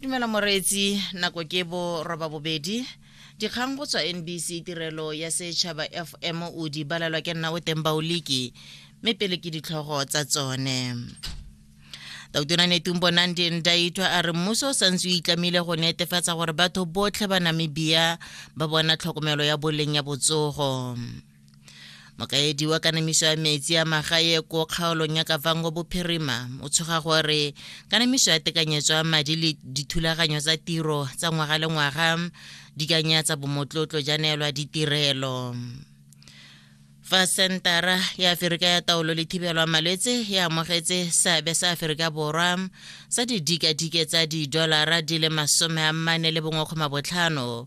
dumela moreetsi nako ke bo roba bobedi dikgang go tswa nbc tirelo ya setšhaba fm o di balelwa ke nna o teng baoliki mme pele ke ditlhogo tsa tsone tautona netumbo nandi ndaitwa a re mmuso o santse o itlamile go netefatsa gore batho botlhe ba namibia ba bona tlhokomelo ya boleng ya botsogo mokaedi wa kanamiso ya metsi a magae ko kgaolong ya kavango bophirima o tshoga gore kanamiso ya tekanyetso ya madi le dithulaganyo tsa tiro tsa ngwaga le ngwaga di ka nyatsa bomotlotlo ja neelwa ditirelo fa sentara ya aferika ya taolo le thibelo ya malwetse e amogetse seabe sa aferika borwa sa didikadike tsa didolara di le masome a mmane le bongwekgoma botlhano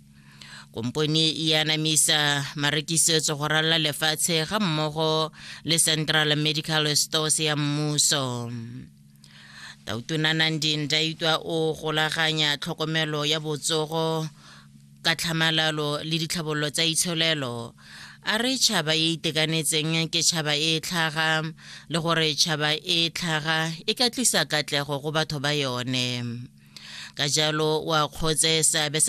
kompone e anamisa marekisetso go ralala lefatshe ga mmogo le central medical stores ya mmuso tautona nandin daitwa o golaganya tlhokomelo ya botsogo ka tlhamalalo le ditlhabololo tsa itsholelo a re tšhaba e itekanetseng ke tšhaba e tlhaga le gore tšhaba e tlhaga e ka tlisa katlego go batho ba yone ka jalo wa kgotse seabe